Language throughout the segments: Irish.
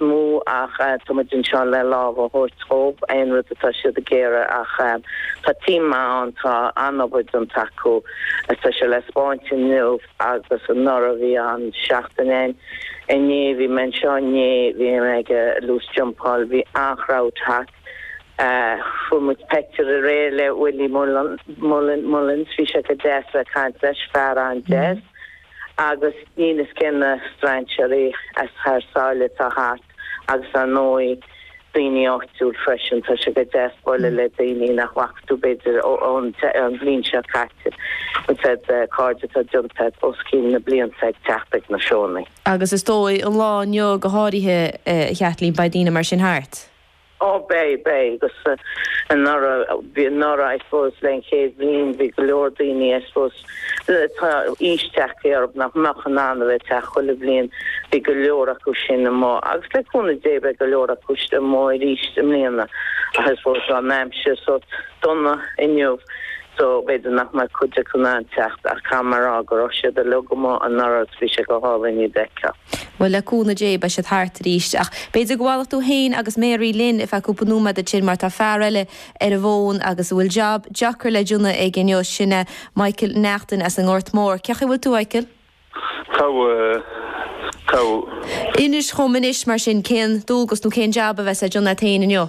mó ach tá muid anseo le lámh a thabhairt dhóibh aon rud atá siad ag iarraidh ach tá team maith ann tá an-obair déanta acu agus tá sé le spáint inniu agus anuraidh bhí an-seachtain ann inné bhí mé anseo inné bhí muid ag loose jumpáil bhí an-chrowd thart fuair muid peictiúr aréir le Willie Mullins bhí sé go deas le caint leis fear an-deas. agus níl a fhios cé na strainséaraí as thar sáile atá thart agus ar ndóigh daoine áitiúil freisin. Tá sé go deas bualadh le daoine nach bhfaca tú b'fhéidir ón bhliain seo caite agus iad cairde atá deonta agat os cionn na blianta ag teacht ag na seónna. Agus is dóigh an lá inniu go háirithe a Chaitlín beidh daoine mar sin thart? Ó beidh, beidh agus anuraidh, bhí anuraidh I suppose le an chéad bhliain bhí go leor daoine I suppose tá aois tagtha orthu nach mbeadh in ann a bheith ag teacht chuile bhliain, bhí go leor acu sin amuigh agus le cúnamh Dé beidh go leor acu amuigh arís i mbliana ach I suppose tá an aimsir so dona inniu so b'fhéidir nach mbeidh cuid acu in ann teacht ach caithfidh mé a rá go raibh siad uilig amuigh anuraidh, bhí sé go hálainn iad a fheiceáil. Bhuel, le cúnamh Dé, beidh siad thart arís. Ach b'fhéidir go bhfanfaidh tú féin agus Mary linn ar feadh cúpla nóiméad ansin mar tá fear eile ar an bhfón agus a bhfuil jab deacair le déanamh aige inniu, sin é Michael Neachtain as an nGort Mór. Cé chaoi bhfuil tú, Mhichael? Inis dhom anois mar sin, cén dualgas nó cén jab a bheas le déanamh agat féin inniu?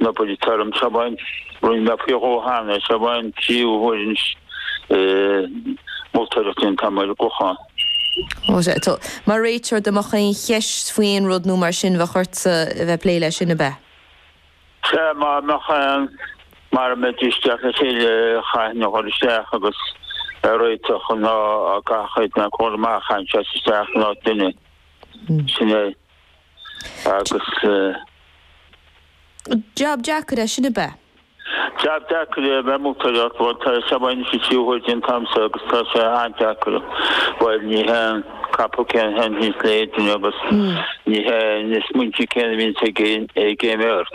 Ó bhuel réiteoir mé sa bhaint. Rinne mé faoi dhó cheana, seo é an tríú huair ag moltóireacht anseo ar an gClochán. Mar réiteoir dá mbeadh aon cheist faoi aon rud nó mar sin bheadh ortsa a bheith ag plé leis, sin ab ea? Sea, dá mbeadh aon, mara mbeidís ag teacht le chéile chaithfinn a chur isteach agus a réiteach nó dá gcaithfeadh éinne a ghoil amach, chaithfinn seasamh isteach in áit duine. Sin é. Jab deacair é sin ab ea? Jab deacair é a bheith ag moltóireacht, bhuel tá sé bainis a trí huair den t-am seo agus tá sé an-deacair. Bhuel ní hé an capall céanna a thaitníonns le chaon duine agus ní hé na smaointe céanna a bhíonns ag aon bheirt.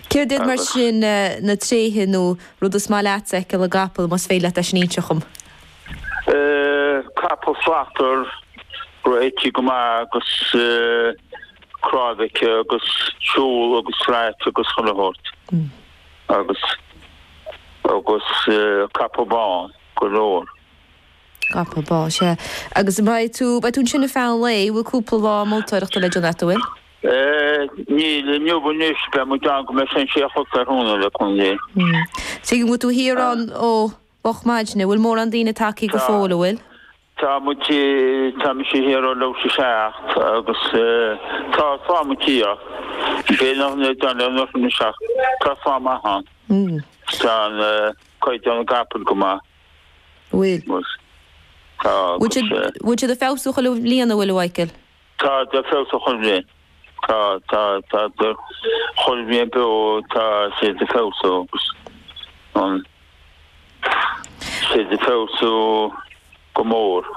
Céard iad mar sin na tréithe nó rud is maith leatsa a fheiceáil i gcapall, más féidir leat é sin a inseacht dhom? Capall slachtmhar go raibh aici go maith agus cnáimh aici agus siúl agus slacht agus chuile shórt agus agus capall bán go leor. Capall bán, sea. Agus beidh tú, beidh tú ansin ar feadh an lae, bhfuil cúpla lá moltóireachta le déanamh agat, an bhfuil? Níl, inniu anois beidh muid ann go mbeidh sé an sé a chlog tráthnóna le cúnamh Dé. Tuigim. An bhfuil tú thiar ann nó Moch maidne, bhfuil mórán daoine tagthaí go fóill, a bhfuil? Tá muid, tá mise thiar ó leathuair tar éis a 7 agus tá fáth muid thiar. B'é nach n-é don le Luas 7, tá slua maith ann. Tá caighdeán na gcapall go maith. Bhfuil. Tá agus. Bhfuil siad ag feabhsú chuile bhliain, a bhfuil, a Mhichíl? Tá siad ag feabhsú chuile bhliain. Tá, tá, tá chuile bhliain beo, tá siad ag feabhsú agus tá siad ag feabhsú go mór.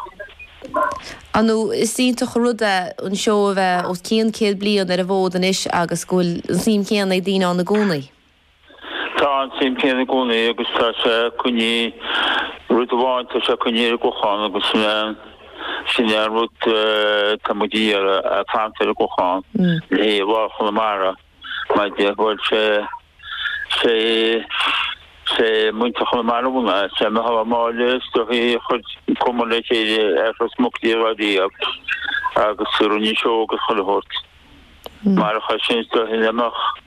Ar ndóigh is iontach an rud é an seó a bheith os cionn céad bliain ar an bhfód anois agus go bhfuil an suim chéanna ag daoine ann i gcónaí. Tá an tsuim céanna i gcónaí agus tá sé coinnithe, rud amháin, tá sé coinnithe ar an gClochán agus sin é an, sin é an rud atá muid a iarraidh, é a fhanacht ar an gClochán le haghaidh Lá Chonamara maidir le, bhuel, sé, sé, sé muintir Chonamara a bhunaigh é, sé Micheál Ó Máille is dóichí a chuir cumann le chéile as Ros Muc Dé Rá Díab agus rinne seó agus chuile shórt. Marach é sin is dóichí nach mbeadh.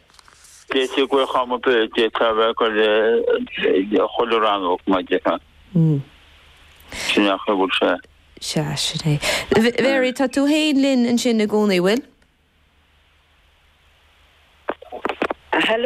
D'eitigh gach ama beirt ag tarrac ar chuile rannóg, mar dhea. Sin é a bhfuil sé. Sea, sin é. Mary, tá tú féin linn ansin i gcónaí, bhfuil?